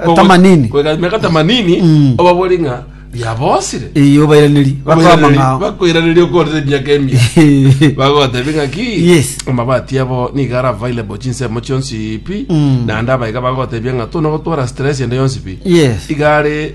Ko- tamanini koigana miaka tamanini Mm. obabori ng'a riabosire iyo bairaneri bakwama ng'ao bakoiraneria okorire emiaka emia bagotebi ng'aki Yes. amabati abo niga ara available chinsemo chionsi pi Mm. naende abaiga bagotebia ng'a tuna gotwara stress ende yonsi pi yes igare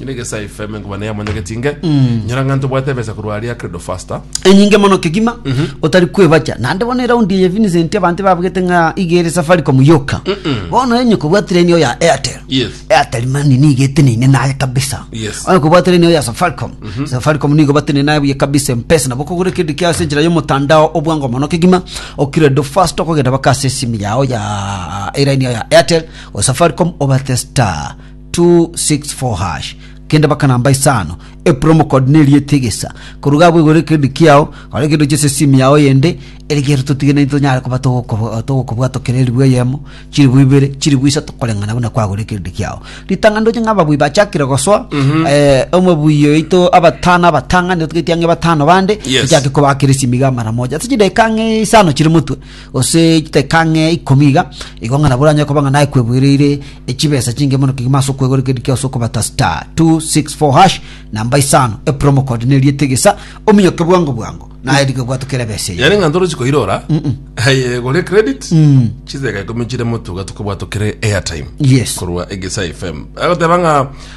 Ine gesae FM nkoba ne yamonyegeti inge. Nyora ng'anto bwate ebesa korwa aria credo faster. enyinge mono kegima otari kwebacha naende bono eraundi eye Vincent abanto babugete ng'a iga ere safaricom yoka bono enye kobwatire ini oya airtel Yes. airtel mani niga eteneine naye kabisa Yes. oya kobwatire ini oya safaricom safaricom nigo bateneine naye buya kabisa mpesa nabo kogora kende kia ase enchera y'omotandao obwango mono kegima okiredo fast okogenda baka ase esimu yao ya eraini yao ya airtel o safaricom obate star 264#. Kende baka namba isano. E promo code ne rieta egesa. Koruga abwo igoro ekendi kiao, gora kende ochese simu yao yende, ere gere totige naintwe tonyare koba togokobo- togokobwata kera eribu eyemo, chiribu ibere, chiribu isato koreng'ana buna kwagora ekendi kiao. Ritang'ani ndoche ng'a ababui bachakire gosoa, eh, omobui oito abatano abatang'ani otagete ang'e batano bande, Yes. ochake kobakera esimi iga mara moja. Ase chidakika ang'e isano chire motwe, gose chidakika ng'e ikomi iga igo ng'a nabo oranyare koba ng'a naye kweboireire echibesa chinge mono kegima ase okwegorekeria kia ase okobata star 264 hash namba isano epromo code neri etegesa ominyoke bwango bwango naye rigo bwatu kera ebesa eyo yani ng'a ntoro chikoirora aye gore credit chideka ikomi chire motuga tukobwa tokere airtime Yes. korwa egesa fm agoteba ng'a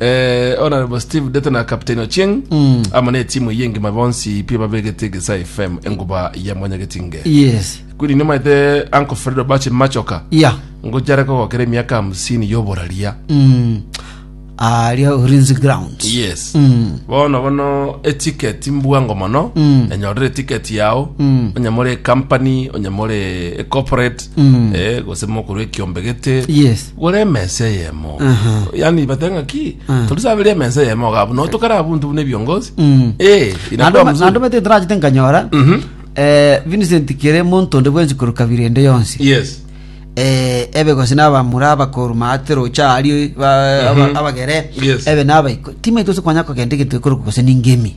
Eh, Honorable Steve Dete na Captain Ochieng Mm. amo ne timu eye ngima bonsi pi babegete Gesa FM enguba ya mwanyagetinge yes kwiri nimaete Uncle Fredo Bache Machoka ya ngochare kogokera emiaka hamsini yoboraria Mm. aria ulinzi ground yes Mm. bono bono etiketi mbwango mono Mm. enyorere etiketi yao Mm. onyamore ecompany onyamore ecorporate Mm. eh, gose mokorwa ekiombegete yes Gore emesa eyemo Aha. yani bateba ng'aki Ah. torisabere emesa eyemo iga abwo notokare abwo ntu buna ebiongozi Mm. Eh, inakuwa mzuri. nando mete ntorachete nkanyora Mhm. eh, vincent kere monto onde bwensi koru kabira ende yonsi yes eh, ebe gose nabamura abakoru maate rocha ario ba- aba- abagere Yes. ebe nabaiko timaite ose kwanya kogenda egento ekoroku gose ningemi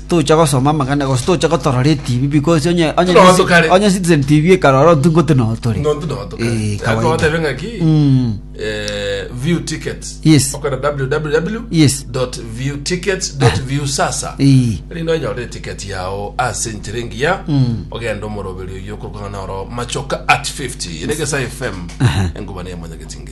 tocha gosoma amagana gose tocha gotorora etibi because onye onye Tinoa tokare. onye citizen tv ekarora ontu ngote no tore nontu notoka Eh, kawaida. akogotebe ng'aki Mm. eh, view tickets Yes. okora www Yes. view tickets view sasa Eh. rino enyorere ticket yao ase enchera engiya Mm. ogenda omoroberi oyo okorokana noro machoka at 50 ere gesa fm engubana ya mwanyagetinge